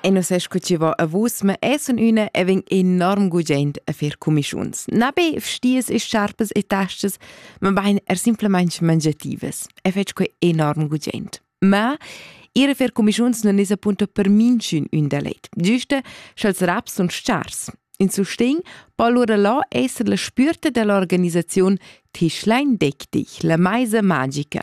E non sai scuceva a vus, ma essen üna e vegn enorm gugent a fer comischuns. Na be vstiers e sciarpas e tastas, ma bain er simplemente mangiativas. E fetsch quei enorm gugent. Ma ir a fer comischuns non es appunto per minchün ün delet. Giuste, sch'els raps sun stars. In sustegn po allura là esser la spürta dell'organisaziun Tischlein deck dich, la meisa magica.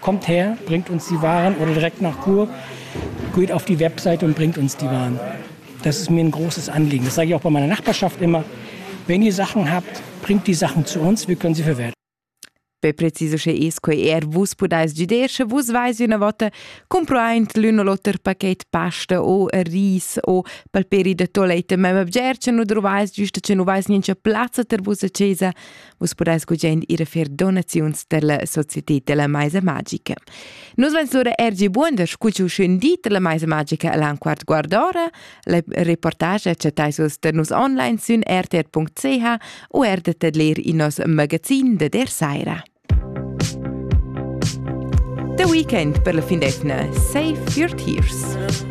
Kommt her, bringt uns die Waren oder direkt nach Chur, geht auf die Website und bringt uns die Waren. Das ist mir ein großes Anliegen. Das sage ich auch bei meiner Nachbarschaft immer. Wenn ihr Sachen habt, bringt die Sachen zu uns, wir können sie verwerten. Pe preciso che esco er vus podais gider, sche vus vais üna vota comproaint l'un o l'oter paquet pasta o ris o palperi de tolete, ma bgerce nu trovais giusto che nu vais niente plazza ter vus a chesa, Vus pudais gugent ir a fer donaziuns per la società della Maisa Magica. Nus vens lura ergi buon da scucciu schön di della Maisa Magica alla quart guardora. La reportage chattais vus da nus online sün rtr.ch u erdet ad leer in nos magazin de der Saira. The weekend per la findetna. Save your tears.